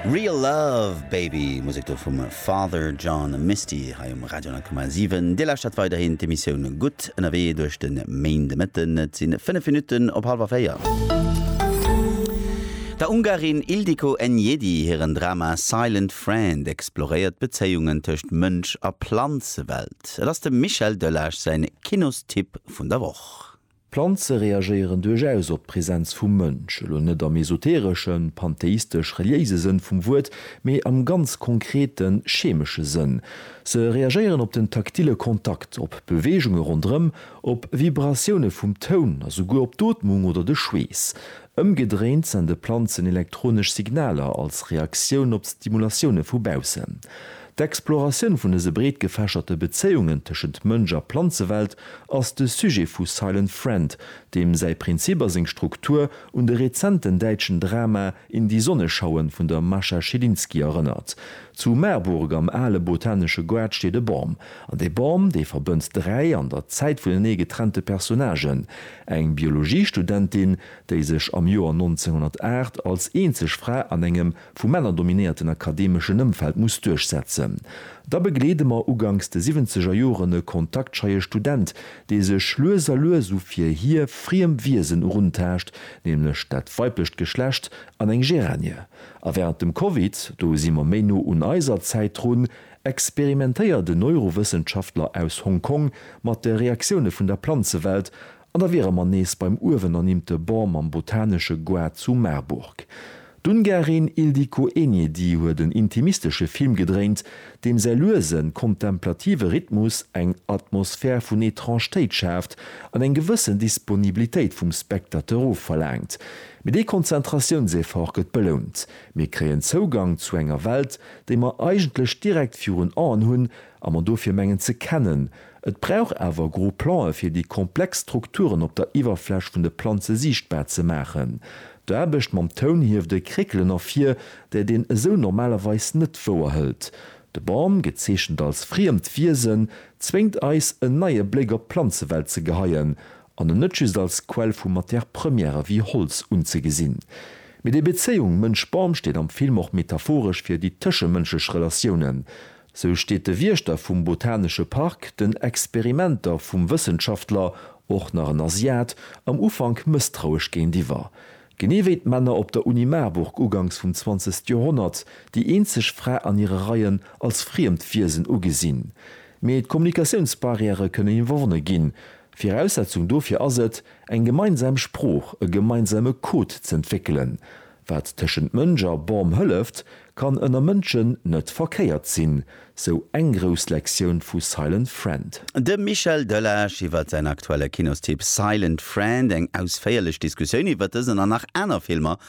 Real Love, Baby, Musek do vum Father John Misty hei um Radio 10,7. Dir lauschtert weiderhin d'Emissioun Gutt ënnerwee duerch de Méindemëtten. Et si 5 Minutten op hallwer 4. Der Ungarin Ildiko Enyedi hiren Drama Silent Friend exploréiert d'Bezéiungen tëscht Mënsch a Planzewelt. Et ass dem Michel Delage säin Kinostipp vun der Woch. Planze reagéieren duerchaus op d'Präsenz vum Mënsch, elo net am esotereschen, pantheistesch-reliéise Sënn vum Wuert, mee am ganz konkreten, chemesche Sënn. Se reagéieren op den taktile Kontakt, op Beweegunge ronderëm, op Vibratioune vum Toun a souguer op d'Ootmung oder de Schweess. Ëmgedréint sende Planzen elektronesch Signaler als Reaktioun op d'Stimulatioune vu baussen. D'Exploratioun vun dëse breet gefächerte Bezéiungen tëschent Mënsch a Planzewelt ass de Sujet vu Silent Friend, deem säi Prinzip a seng Struktur un de rezenten däitschen Drama In die Sonne schauen vun der Mascha Schilinski erënnert. Zu Marburg am ale botanesche Goart steet e Bam. An dee Bam, dee verbënnt dräi an der Zäit vunenee getrennte Personnagen, eng Biologiestudentin, déi sech am Joer 1908 als eenzeg Fra an engem, vu Männer dominéierten akademeschen Ëmfeld muss duerchsetzen. Da begleede mer uganks de siwwenzeger Joren e kontaktscheie Student, dee sech lues a lues u fir hie friem Wiesen eruntaascht, nämlech dat weiblecht Geschlecht an eng Géranie. A wärend dem Covid, do si mer méi no un eiser Zäit drun, experimentéiert en Neurowëssenschaftler aus Hong Kong mat de Reaktioune vun der Planzewelt An da wiere mer nees beim uewen ernimmte Bon mam botanesche Goût zu Marburg. D'Ungarin Ildikó Enyedi huet en intimistesche Film gedréint, deem säi luesen, kontemplative Rhythmus eng Atmosphär vun Etrangetéit schaaft an eng gewëssen Disponibilitéit vum Spectateur ofverlaangt. Mee dee Konzentratiounseffort gëtt belount, mir kréien Zougang zu enger Welt, déi mer eigentlech direkt virun Aen hunn a mer dofir mengen ze kennen, Et brauch awer gro Plan'e fir déi komplex Strukturen op der Iwwerfläch vun de Planze siichtbar ze maachen. D'Aarbecht mam Toun hieft e Kréckelen ervir, dat een esou normalerweis net wouerhëlt. De Bam, gezeechent als friemt Wiesen, zwéngt eis en neie Bléck op d'Planzewelt ze geheien an en net just als Quell vu Matière Première wéi Holz unzegesinn. Mee déi Bezéiung Mënsch-Bam steet am Film och metaphoresch fir déi tëschemënschlech Relatiounen. Sou steet de Wiechter vum Botanesche Park den Experimenter vum Wëssenschaftler, och nach en Asiat, am Ufank mësstrauesch géintiwwer. Genee wéi d'Männer op der Uni Marburg uganks vum zwanzegste Joerhonnert déi eenzeg Fra an hire Reien als friemt Wiesen ugesinn. Mee d'Kommunikatiounsbarrièrë kënnen iwwerwonne ginn. Viraussetzung dofir ass et, eng gemeinsam Sprooch, e gemeinsame Code z'entwéckelen. Wat tëschent Mënsch a Bam hëlleft, kann ënner Mënschen net verkéiert sinn, sou eng grouss Lektioun vu Silent Friend. De Michel Delage iwwer säin aktuelle Kinostipp Silent Friend, eng ausféierlech Diskussioun iwwer dësen an nach aner Filmer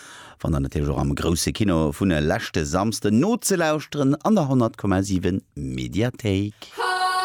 fannt der natierlech och am Grousse Kino vun e leschte Samsden nozelauschteren an der 100,7 Mediathéik.